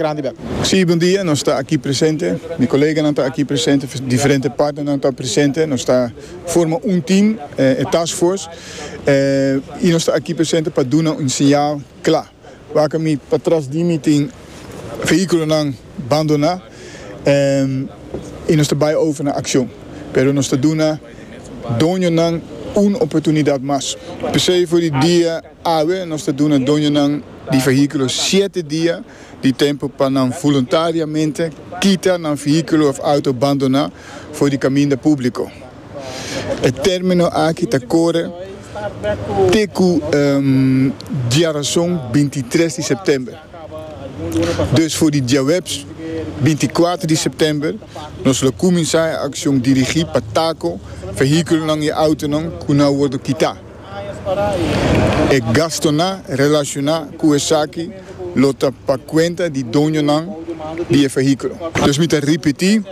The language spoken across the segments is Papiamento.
grandi bek. Sí, bon dia, nos ta aki presente, mi koleganan ta aki presente, diferente partnernan ta presente, nos ta forma un team, e task force, i nos ta aki presente pa duna un señal cla, wak mi pa tras di mi tin vehiculonan bandona i nos ta bay over na accion, pero nos ta duna doñonan un oportunidad mas, pesey for di dia. Awe nos ta duna doñonan di fehíkulo shete dia di tempu pa nan voluntariamente kita nan fehíkulo òf auto bandoná for di kaminda públiko. E término aki ta kore te ku diarason binti i tres di sèptèmber. Dus for di diaweps binti i kuater di sèptèmber nos lo kuminsá e akshon dirigí pa tako fehíkulonan i autonan ku na wòrdu kitá. E gastunan relashoná ku esaki lo ta pa kuenta di doñonan di e fehíkulo. Pues mi ta ripití,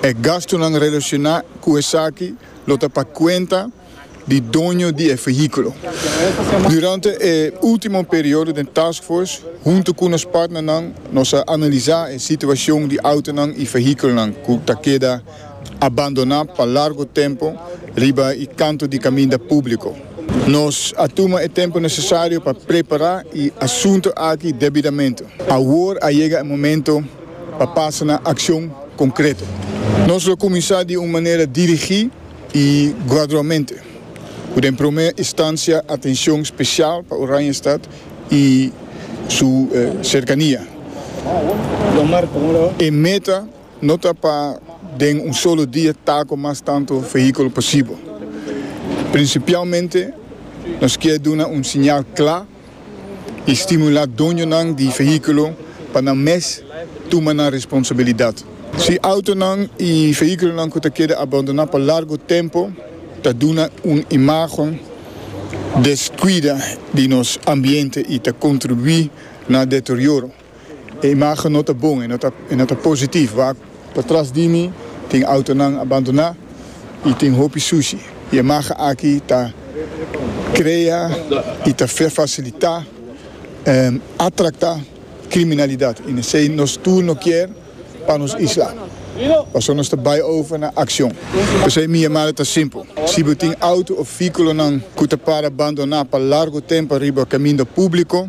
E gastunan relashoná ku esaki lo ta pa kuenta di doño di e fehíkulo. Durante e último periodo den Task Force, huntu ku nos partnernan, nos a analisá e situashon di outonan i fehíkulonan ku ta keda. a bandoná pa largu tempu riba e kantu di kaminda públiko. Nos a tuma e tempu nesesario pa prepará e asuntu aki debidamente. Awor a yega e momentu pa pasa na akshon konkreto. Nos lo kuminsá di un manera dirigí i gradualmente, ku den promé istansia atenshon spesial pa Oranjestad i su serkania. E meta. No ta pa den un solo dia ta cu mas tanto vehiculo posibel. Principialmente nos kier duna un siñal cla y stimula doñonan di vehiculo pa nan mes tuma nan responsabilidad. Si autonan y vehiculonan cu ta keda abandona pa largo tempo ta duna un imagen descuida di nos ambiente y ta contribui na deterioro. E imagen no ta bon, e no ta positivo, wak. Patras di mi tin autonan abandoná i tin hopi sushi. E imagen aki ta krea i ta fasilitá atraktá kriminalidat i nesei nos tur no kier pa nos isla. Pasobra nos ta bai over na akshon. P'esei mi yamada ta simpel. Si bo tin auto òf vehíkulonan ku ta para abandoná pa largu tempu riba kaminda públiko,